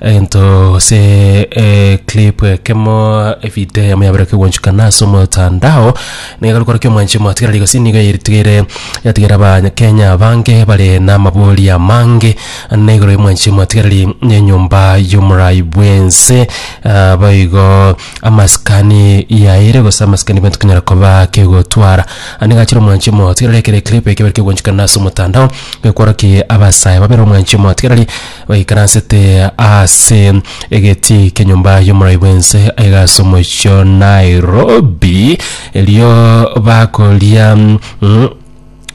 Egento gose eclip ekemo evideo yamo yabera kegwanchukana ase omotandao niga gokora kia omwanchi omotigera rigosi nigo yatigere yatigera abanyakenya bange bare namabori amange na igoro y'omwanchi omotigereri nenyomba y'omorai bwense Ah, boigo amasikani yaire gose amasikani bwense konyara koba kegotwara anigachire omwanchi omotigereri ekere eclip ekebere kegwanchukana ase omotandao gekworoki abasae babere omwanchi omotigereri Baikaransete ase egetii kenyomba y'omorai bw'ense aiga ase omochie o Nairobi, erio bakoria mm,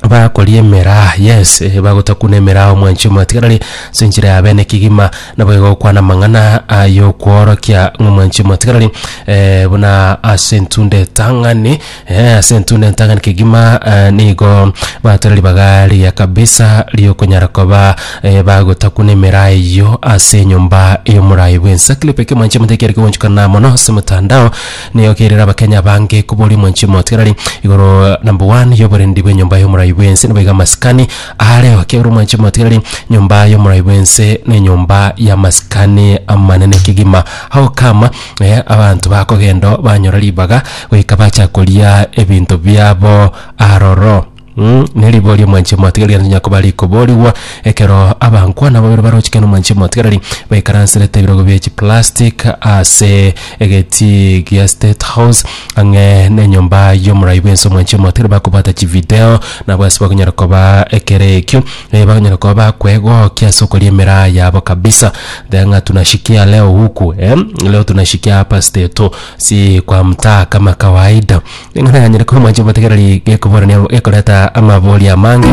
bakoria emeraa yes eh, bagotakuna emeraa omwanchi omwatigarari ase enchera ya bene kegima naboigo gokwana amang'ana ay'okworokia ng'a omwanchi omwatigarari eh, buna ase entunda etang'ani Ee, ase entunda entang'ani kegima eh, nigo batora ribaga riya kabisa riokonyara koba eh, bagotakwa n'emeraa eyio ase enyomba y'omorai bw'ensa clip eke mwanche moteke ere kegonchikana mono ase motandao nigo kerera abakenya bange kobori mwanche motigarari igoro number one y'oborendi bw'enyomba y'omorai bw'ense nibo iga amasikani areo kegoro mwanche motigarari nyomba y'omorai bw'ense na enyomba y'amasikani amanene kegima how come Ee, abanto bakogenda banyora ribaga goika bacha koria ebinto biabo aroro. Mm, neribo ri'omwanchia omotigareri nonye koba rikoborigwa ekero abankwana babere barochikana omwanchia omotigareri baikaransete ebirogo bie chiplastic ase egetii gia State House ang'e nenyomba y'omorai bw'ense omwanchia omotigareri bakobwata chivideo nabo ase bakonyara koba ekero ekio Eh, bakonyara koba bakwegokia ase okoria emeraa yabo kabisa. Then ng'a tunashikia leo huku eh, leo tunashikia hapa steto, si kwa mtaa kama kawaida. Ng'a nanyare koba mwanche motegereri gekoborania gekoreta amabori amange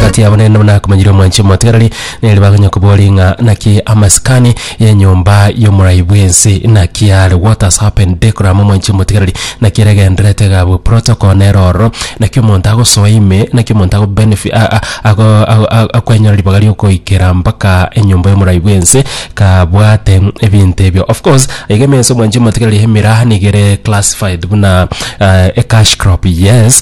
kati yabo nende buna akomanyire omwanchi omotegereri nere bakonya kobori ng'a naki amasikani Y'enyomba y'omorai bw'ense, naki yaare what has happened decorum omwanchi omotigareri, naki eregenderete egabwe protocol nere ororo, naki omonto agosoa ime, naki omonto ago benefi- a- a- ago ago- ago- akwenyora ribaga riokoikera mpaka enyomba y'omorai bw'ense kabwate ebinto ebio. Of course, aiga ime ense omwanchi omotigareri emeraha nigo ere classified buna ah, ecash crop, yes,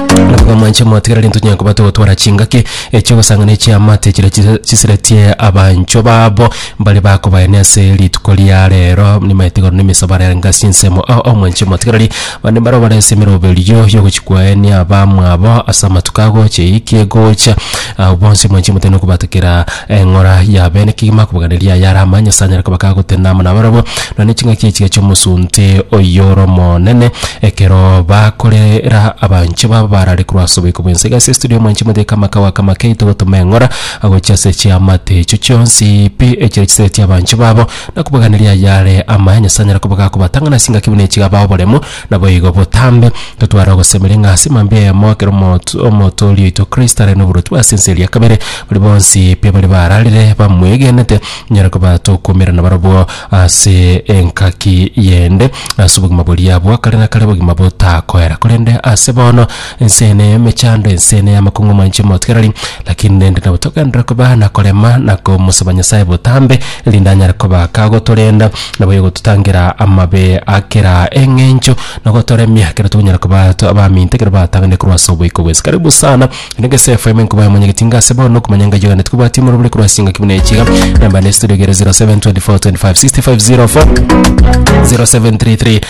Naboigo mwanche motigere rento tonyare kobwata ogotwara chingaki chi'ogosangana echiamate chiria chise- chiseretie abanchwa babo mbaria bakobaene ase rituko ria rero nimaete igoro na emesabato yabo anga ase ensemo ao ao mwanche motigereri abande mbaro bare ase emeroberio yogochia kwaenia abamwabo ase amatuko agocha eyio ekegocha. Abwo bonsi mwanche motenene kobwata kera. Eng'ora ya bene kegima kobaganiria aya arama Nyasae anyare koba kagotenda amo nabarabwo, nonya ne chingaki echiga chi'omosunte oyor'omonene, ekero bakorera abanche babo barare korwa ase oboiko bw'ense. Iga ase estudio mwanche moteke amakao aka make togotoma eng'ora agochia ase chiamate echio chionsi pi echire chiseretie abanche babo, na kobaganiria ayare ama Nyasae anyare koba gakobatang'ana ase engaki buna echiga bao boremo, Naboigo botambe, totware ogosemeria ng'a ase mambia eyemo ekero omoto Omotooria oito Kristo are noboroti ase ense eria kabere, baria bonsi pi baria bararire bamwegenete nyare koba tokomerana barabwo ase engaki yende, ase obogima boria bwa kare na kare, obogima botakoera korende ase bono, Enseene y'emechando, enseene y'amakong'uma inche motigarari, lakini rende nabo togenderere koba na korema na komosaba Nyasae botambe, erinde anyare koba kagotorenda, na boigo gototangera amabe a kera eng'encho, na gotoremia ekero tokonyara koba to abaminto ekero batanganire korwa ase oboiko bwensi. Karibu sana, ere gese FM nkobaye mwenye getinga ase bono, okomanya engayo yane tikobwati morobori korwa ase chingaki buna echi iga, namba ne studio igere 0724 25 65 04 0733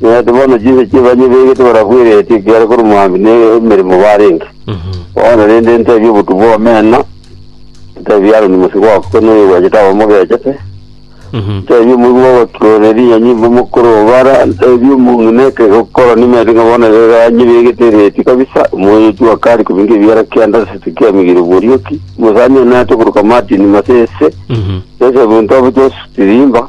Naende bono chinsa chi'ebani ebeegete barabwereretie ekiagera korwa moambia n'emeremo barenge. Bono rende ntebie obotugi bw'omena, ntebie Aroni mosibwa oo korwa noyoegwechete abe omogechete, ntebie omoigwa bw'ogotureria rinyanyi mbe omokoro oo bara, ntebie omong'ina ekero koroni maete ng'a bono ebeegani ebeegete ereeti kabisa, omoyoochwa akare kobinga ebiara kende ase tikemigiire borioki, omosani oye naete okoruka Martin Masese, Joseph Ntobi Joseph Tirimba,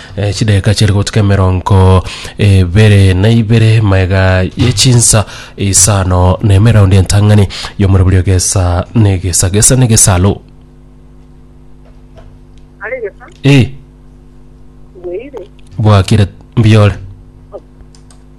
Eh, chidakika chiri gotuka emerongo ebere na ibere maega yechinsa isano na emeraundi entang'ani yomorobori ogesa negesa gesa negesalo Are gesa, e bweire, bwakire mbiore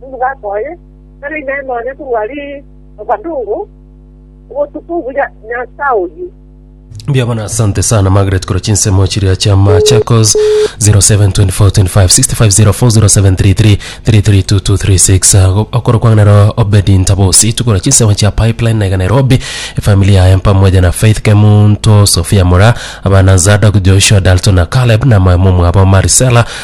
nomogaka oye, tari inee nonya korwa rirobanugo, obotuko buya Nyansa oyi? Mbuya bono asante sana Margaret korwa chinsemo chiria chia Machakos 07245650040733332236 okoro kwanganero Obedi Ntabosi tukora chinsemo chia Pipeline na Nairobi familia yaye mpamoja na Faith Kemunto Sofia Mura abana Zadok Joshua Dalton na Caleb na mama mwabo Maricela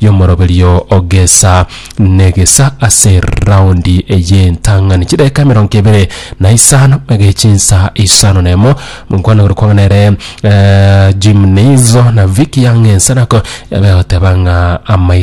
y'omoroberio o gesa negesa ase raundi eye entang'ani chidaeka emerongo ebere na isano ege chinsa isano nemo monkwana gore kwang'ana ere eh, jimnizo na viki yang'ensanako yabe goteba ng'a amaiso